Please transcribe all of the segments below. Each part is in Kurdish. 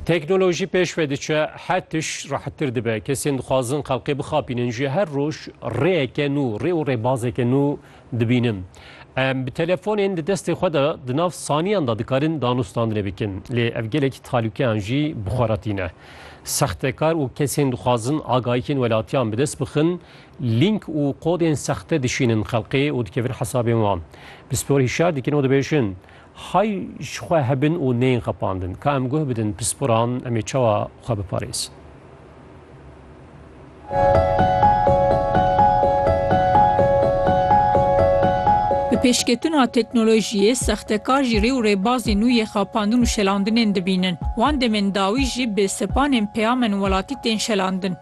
Teknolojî pêş ve diçe, her tiş rehettir dibe. Kesên dixwazin xelkê bixapînin jî her roj rêyeke nû, rê û rêbazeke nû dibînin. Em bi telefonên di destê xwe de di nav saniyan de dikarin danûstandinê bikin. Lê ev gelekî talûkeyan jî bi xwe re tîne. Sextekar û kesên dixwazin agahiyên welatiyan bi dest bixin, lînk û kodên sexte dişînin xelkê û dikevin hesabên wan. Pispor hişyar dikin û dibêjin, Hay ji xwe hebin û neyên xepandin. Ka em guh bidin pisporan em ê çawa xwe biparêzin? Bi pêşketina teknolojiyê, sextekar jî rê û rêbazên nû yê xapandin û şelandinên dibînin. Wan demên dawî jî bi sepanên peyamên welatî tên şelandin.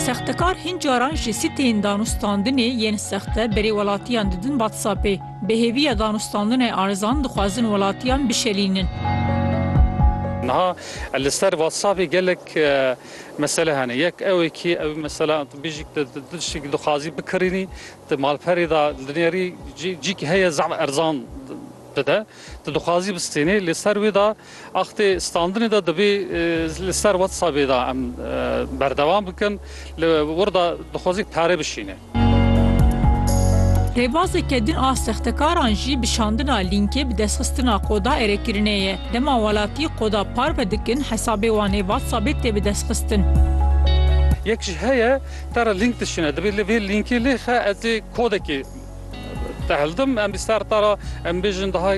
Sextekar Hin caran ji sîteyên danûstandinê yên sexte berê welatiyan didin WhatsAppê. Bi hêviya danûstandinê erzan dixwazin welatiyan bişelînin. Niha li ser WhatsAppê gelek mesele hene. Yek ew ê kî ew mesela tu bêjî tu tiştekî dixwazî bikirînî, tu malperê de dinêrî cî cî kî heye zaf erzan dide. Tu dixwazî bistênî lê ser wê de Axtê standinê de divê li ser WhatsAppê de em berdewam bikin. Li wir de dixwazî pere bişîne. Rêbazeke din a sextekaran jî bi şandina lînkê bi destxistina qoda erêkirinê ye. Dema welatî qoda parve dikin hesabê wan ê WhatsAppê tê bi destxistin. Yek jî heye te re lînk dişîne, divê li vê lînkê lê xe ez ê kodekê. Dihildim em bi ser te re em bêjin daha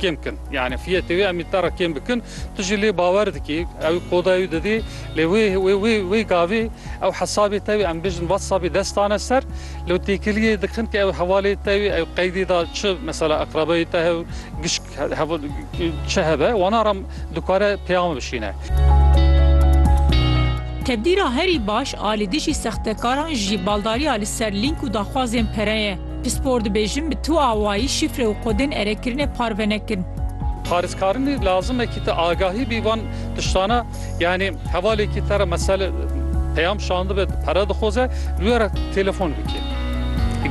kêm bikin. Yani fiyetê wê em ê te re kêm bikin. Tu jî lê bawer dikî. Ew koda ew didî. Lê wê wê wê wê gavê ew hesabê te wê em bêjin WhatsAppê dest dane ser. Lê têkiliyê dikin ke ew hevalê te wê ew qeydê da çi mesela eqrebeyê te hev gişt Hevû çi hebe wana re dikare peyama bişîne. Tevdîra herî baş a li dijî sextekaran jî baldariya li ser lînk û daxwazên pere ye. Pispor dibêjin bi tu awayî şîfre û kodên erekirinê parve nekin. Parêzkarinê lazim e kî te agahî bî van tiştane yanî hevalêkî te re mesele peyam şandibe pere dixwaze li wê re telefon bikî.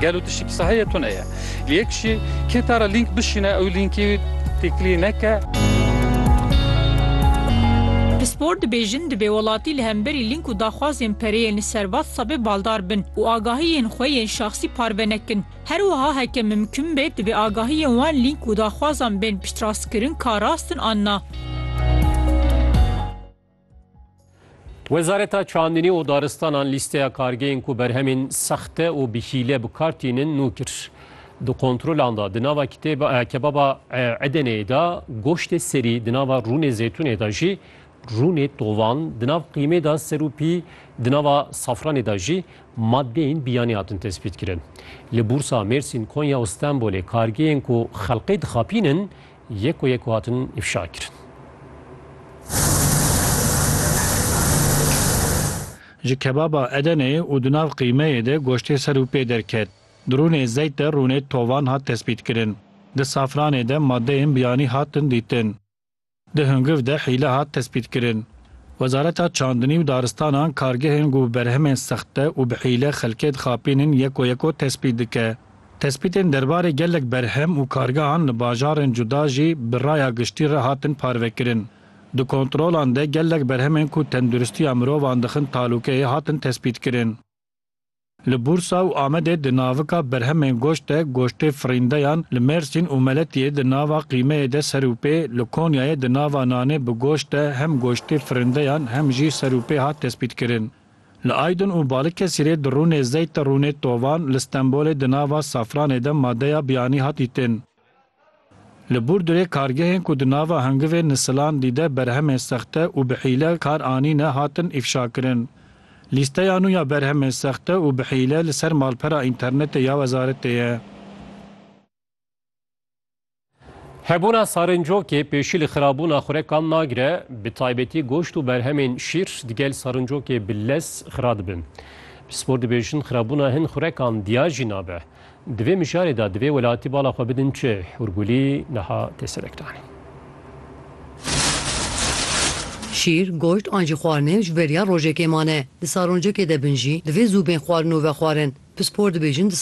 Gelo tiştekî saheye tune ye. Li yek jî kê te re lînk bişîne ew lînkê têkilî neke. Pispor dibêjin divê welatî li hemberî lînk û daxwazên pereyên li ser WhatsAppê baldar bin û agahiyên xwe yên şaxsî parve nekin. Her wiha heke mimkun be divê agahiyên wan lînk û daxwazan bên piştrastkirin ka rast in an na. Wezareta Çandinî û Daristanan lîsteya kargeyên ku berhemên sexte û bi hîle bi kar tînin nû kir. Di kontrolan de di nava kebaba Edeneyê de goştê serî, di nava rûnê zeytûnê de jî rûnê tovan, di nav qîmê de ser û pî, di nava safranê de jî madeyên biyanî hatin tespîtkirin. Li Bûrsa, Mêrsîn, Konya û Stenbolê kargeyên ku xelkê dixapînin Yek û yek û hatin îfşa kirin. Ji kebaba Edenê û di nav qîmeyê de goştê ser û pê derket. Di rûnê zeyt de rûnê tovan hat tespîtkirin. Di safranê de madeyên biyanî hatin dîtin. Di hungiv de hîle hat tespîtkirin. Wezareta Çandinî û Daristanan kargehên ku bi berhemên sexte û bi hîle xelkê dixapînin yek û yek o tespît dike. Tespîtên derbarê gelek berhem û kargehan li bajarên cuda jî bi raya giştî re hatin parvekirin. Di kontrolan de gelek berhemên ku tenduristiya mirovan dixin talûkeyê hatin tespîtkirin. Li Bursa û Amedê di navika berhemên goşt de goştê firîndeyan, li Mêrsîn û Meletiyê di nava qîmeyê de ser û pê, li Konyayê di nava nanê bi goşt de hem goştê firindeyan hem jî ser û pê hat tespîtkirin. Li Aydin û Balikesirê di rûnê zeyt de rûnê tovan, li Stenbolê di nava Safranê de madeya biyanî hat dîtin. Li Burdurê kargehên ku di nava hingivên nisilan dîde berhemên sexte û bi hîle kar anîne hatin îfşakirin. Lîsteya nû ya berhemên sexte û bi hîle li ser malpera înternetê ya wezaretê ye. Hebûna sarincokê pêşî li xirabûna xurekan nagire, bi taybetî goşt û berhemên şîr di gel sarincokê bi lez xira dibin. Pispor dibêjin xirabûna hin xurekan diya jî nabe. Di vê mijarê de divê welatî bala xwe bidin çi? Hûrgulî niha tê serekdanê. Şîr, goşt an jî xwarinê ji beriya rojekê mane. Di sarincokê de bin jî divê zû bên xwarin û vexwarin. Pispor dibêjin di